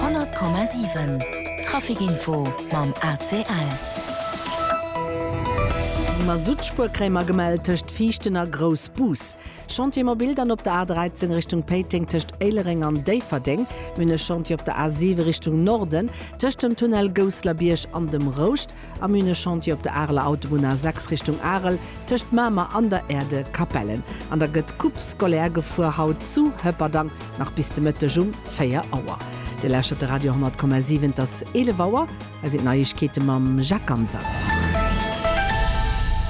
100,7 Traficinfo mam ACL. Masuttspuer kréie mer gemellt tëscht Viichten a Groussbus. Chantier mobil dann op der A 13 Richtung Péiteng tëscht Éilereng an Déifferdeng. Mir hunn e Chantier op der A 7 Richtung Norden tëscht dem Tunnel Gousseler Bierg an dem Rouscht. Am Hühneschantier op der Areler Autobunn A6 Richtung Arel tëscht Mamer an der Aire de Capellen. An da gëtt d'Coupe scolaire gefuer, haut zu Hëpperdang nach bis de Mëtteg um 4 Auer. Dir lauschtert de Radio 100,7, et ass 11 Auer. Hei sinn d'Neiegkeete mam Jacques Ganser.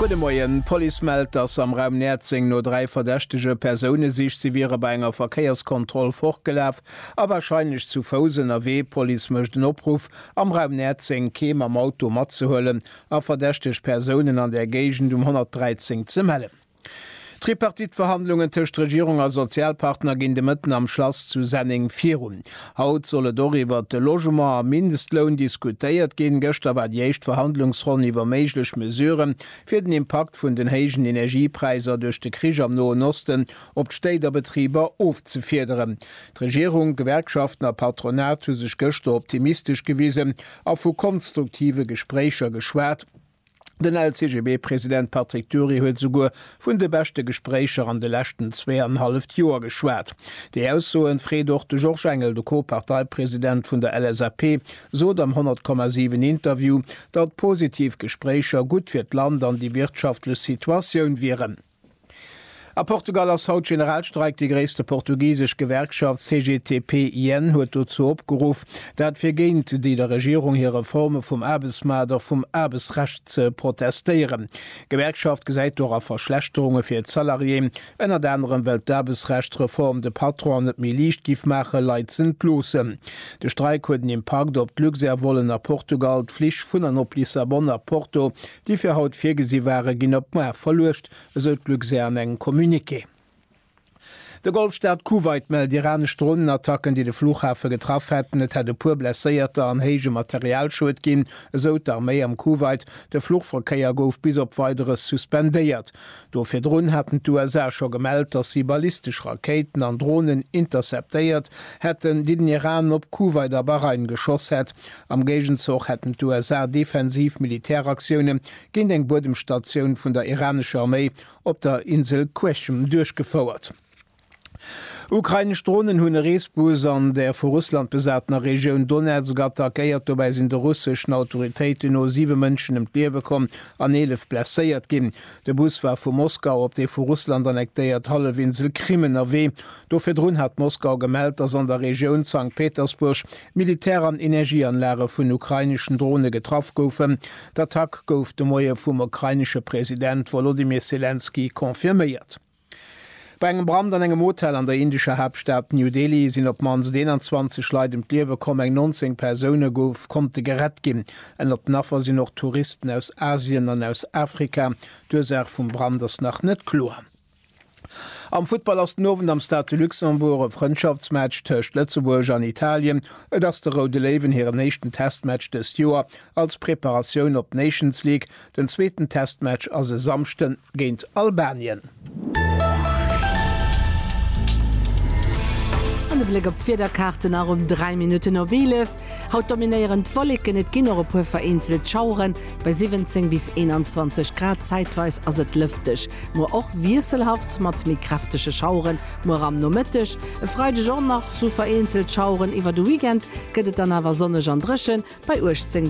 Gudde Moien. D'Police mellt, dass am Raum Näerzeng no dräi verdächtege Persoune sicht. Si wiere bei enger Verkéierskontroll fortgelaf a warscheinlech zu Fouss ënnerwee. D'Police mécht en Opruff Am Raum Näerzeng keem am Auto matzehuelen a verdächteg Persounen an där Géigend um 113 ze mellen. D'Tripartite-Verhandlungen tëscht Regierung a Sozialpartner ginn de Mëtten am Schlass zu Senneng virun. Haut soll et och iwwert de Logement a Mindestloun diskutéiert ginn. Gëschter war déi éischt Verhandlungsronn iwwer méiglech Mesurë fir den Impakt vun den héijen Energiepräisser duerch de Krich am Noen Osten op d'Stéit a Betriber ofzefiederen. D'Regierung, d'Gewerkschaften a Patronat hu sech gëschter optimistesch gewisen a vu konstruktive Gespréicher geschwat. Den LCGB-President Patrick Dury huet esouguer vun de beschte Gespréicher an de leschten zweeanenhalleft Joer geschwat. Déi Aussoen freet och de Georges Engel. De Co-Parteipresident vun der LSAP sot am 100,7 Interview, datt positiv Gespréicher gutt fir d'Land an déi wirtschaftlech Situatioun wieren. A Portugal ass haut Generalstreik. Déi gréisste portugisesch Gewerkschaft CGTP-IN huet dozou opgeruff, dat fir géint déi der Regierung hir Reforme vum Aarbechtsmaart a vum Aarbechtsrecht ze protestéieren. D'Gewerkschaft gesäit dora Verschlechterunge fir d'Salariéen, ënnert anerem well d'Aarbechtsrechtsreform de Patronen et net méi liicht giff maache Leit z'entloossen. De Streik huet en Impakt op d'Luxair-Vollen a Portugal. D'Flich vun an op Lissabon a Porto déi fir haut virgesi waren, ginn op muar verluecht, esou d'Luxair an engem Communiqué. De Golfstaat Kuwait mellt iranesch Dronenattacken, déi de Fluchhafe getraff hätten. Et hätt e puer Blesséierter an héije Materialschued ginn, esou d'Arméi am Kuwait. De Fluchverkéier gouf bis op Weideres suspendéiert. Do virdrun haten d'USA scho gemellt, datt si ballistesch Rakéiten an Dronen interceptéiert hätten, déi den Iran op Kuwait a Bahrain geschoss hätt. Am Géigenzoch hätten d'USA defensiv Militäraktioune géint eng Buedemstatioun vun der iranescher Arméi op der Insel Qeshm duerchgefouert. Ukrainesch Dronen hunn e Reesbus an der vu Russland besatener Regioun Donezk attackéiert. Dobäi sinn de russeschen Autoritéiten no siwe Mënschen ëm d'Liewe komm an eelef blesséiert ginn. De Bus war vu Moskau op déi vu Russland annektéiert Hallefinsel Krim ënnerwee. Do virdrun hat Moskau gemellt, datt an der Regioun Sankt Petersburg Militär an Energieanlage vun ukraineschen Drone getraff goufen. D'Attack gouf de Moie vum ukrainesche President Wolodymyr Selenskyj confirméiert. Bei engem Brand an engem Hotel an der indescher Haaptstad New Delhi sinn op d'mannst 21 Leit ëm d'Liewe komm, eng 19 Persoune gouf konnte gerett ginn. Ënnert den Affer sinn och Touristen aus Asien an aus Afrika. D'Ursaach vum Brand ass nach net kloer. Am Futtball ass den Owend am Stade de Luxembourg e Frëndschaftsmatch tëscht Lëtzebuerg an Italien. Et ass de Roude Léiwen hiren éischten Testmatch dëst Joer als Preparatioun op d'Nations League. Den zweeten Testmatch ass e Samschde géint Albanien. An de Bléck op d'Wiederkaarten nach um 3 Minutten op 11. Haut dominéieren d'Wolleken, et ginn och e puer vereenzelt Schaueren, bei 17 bis 21 Grad. Zäitweis ass et lëfteg, muer och wiesselhaft mat méi kräftege Schaueren, muer am Nomëtteg. E Freideg och nach sou vereenzelt Schaueren, iwwer de Weekend gëtt et dann awer sonneg an dréchen, bei 18 bis 21 Grad.